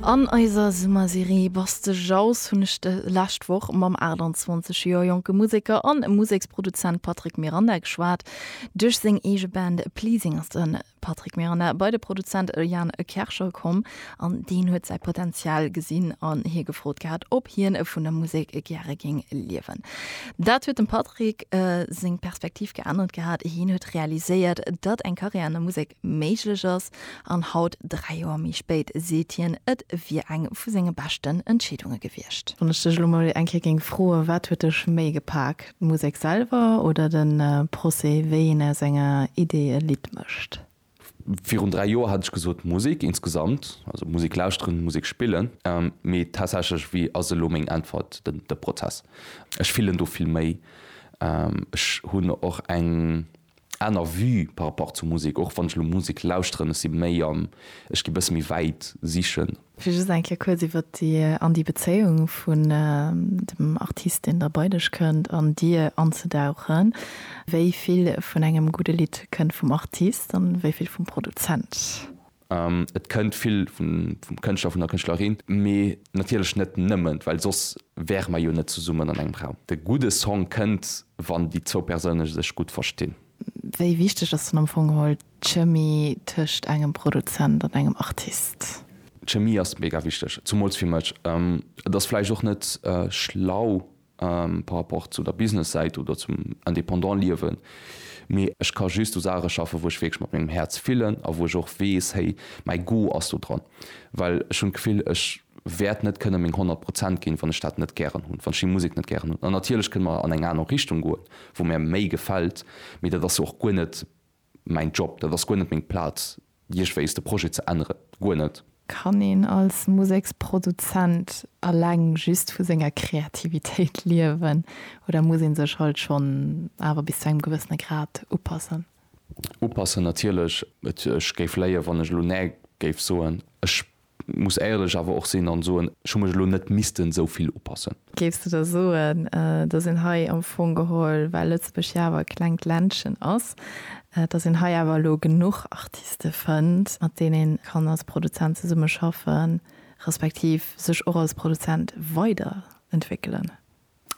An eiser Summerserie Bass de Jauss hunn ech de lescht Woch mam 28 Joer jonke Museker an Museksproduzent Patrick Miranda geschwat. Duerch seng eege Band Pleasing ass de Patrick Miranda bei de Produzent Jan Kerschel komm an deen huet säi Potenzial gesinn an hie gefrot gehat, ob hien vun der Musek gäre géing liewen. Dat huet dem Patrick seng Perspektiv geännert gehat, hien huet realiséiert, datt eng Karriär an der Musek méiglech ass, an haut, dräi Joer méi spéit, seet hien, et wier eng vu senge beschten Entscheedunge gewiescht. Wann ech dech elo mol eng Kéier géing froen, wat huet dech méi gepak, d'Musek selwer oder de Procès, wéi een aus enger Idee e Lidd mécht? Virun dräi Joer hätt ech gesot, d'Musek insgesamt, also Musek lauschteren, Musek spillen. Mee tatsächlech, wéi ass elo meng Äntwert, de Prozess. Ech fillen do vill méi. Ech hunn och eng aner Vue par rapport zur Musek, och wann ech elo Musek lauschteren, ech si méi am, ech gi bësse méi wäit sichen. Fir just eng Kéier kuerz iwwert déi, an déi Bezéiung vun dem Artist, deen da bei dech kënnt, an dir anzedauchen, wéi vill vun engem gudde Lidd kënnt vum Artist an wéi vill vum Produzent? Et kënnt vill vum Kënschtler, vun der Kënschtlerin, mee natierlech net nëmmen, well soss wäre mer jo net zesummen an engem Raum. De gudde Song kënnt, wann déi zwou Persoune sech gutt verstinn. Wéi wichteg ass dann am Fong geholl d'Chemie tëscht engem Produzent an engem Artist? D'Chemie ass mega wichteg, zumools fir mech. Et ass vläicht och net schlau, par rapport zu der Business-Säit oder zum indépendant Liewen, mee ech ka just u Saache schaffen, wou ech wierklech mat mengem Häerz fillen a wou ech och weess, hey, mäi Go ass do dran. Well ech hunn d'Gefill, ech wäert net kënne meng 100 Prozent ginn, wann ech dat net gären hunn, wann ech déi Musek net gären hunn. An natierlech kënne mer an eng aner Richtung goen, wou mär méi gefält, mee dat ass jo och guer net Mäin Job, dat ass guer net meng Plaz, iergwéis de Projet ze änneren. Guer net. Kann een als Museksproduzent eleng just vu senger Kreativitéit liewen oder muss ee sech halt schonn awer bis zu engem gewëssene Grad upassen? Upassen natierlech. Ech géif léien, wann ech elo näe géif soen. Ech Muss éierlech awer och sinn an soen, ech hu mech elo net missten esou vill upassen. Géifs de da soen, dass een hei am Fong geholl, well Lëtzebuerg jo awer e klengt Ländchen ass, dass een hei awer elo genuch Artiste fënnt, mat deenen ee kann als Produzent zesummeschaffen, respektiv sech och als Produzent weiderentwéckelen?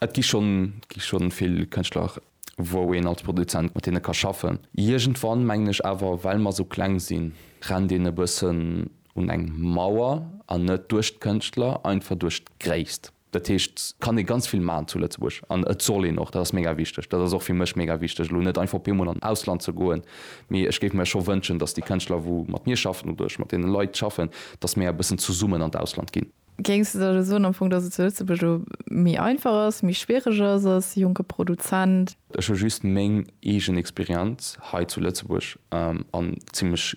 Et gi schonn, gi schonn vill Kënschtler, wou een als Produzent mat deene ka schaffen. Iergendwann, mengen ech awer, well mer esou kleng sinn, rennt een e bëssen un eng Mauer, an net duerch d'Kënschtler, einfach duerch d'Gréisst. Dat heescht, et kann ee ganz vill maachen zu Lëtzebuerg, an et soll een och, dat ass mega wichteg. Dat ass och fir mech mega wichteg, elo net einfach op eemol an d'Ausland ze goen, mee ech géif mir scho wënschen, datt déi Kënschtler, wou mat mir schaffen, oder ech mat deene Leit schaffen, datt mir e bëssen zesummen an d'Ausland ginn. Géings de da elo soen am Fong, datt et zu Lëtzebuerg elo méi einfach ass, méi schwiereg ass als jonke Produzent? Ech hu just meng eegen Experienz hei zu Lëtzebuerg an zimmlech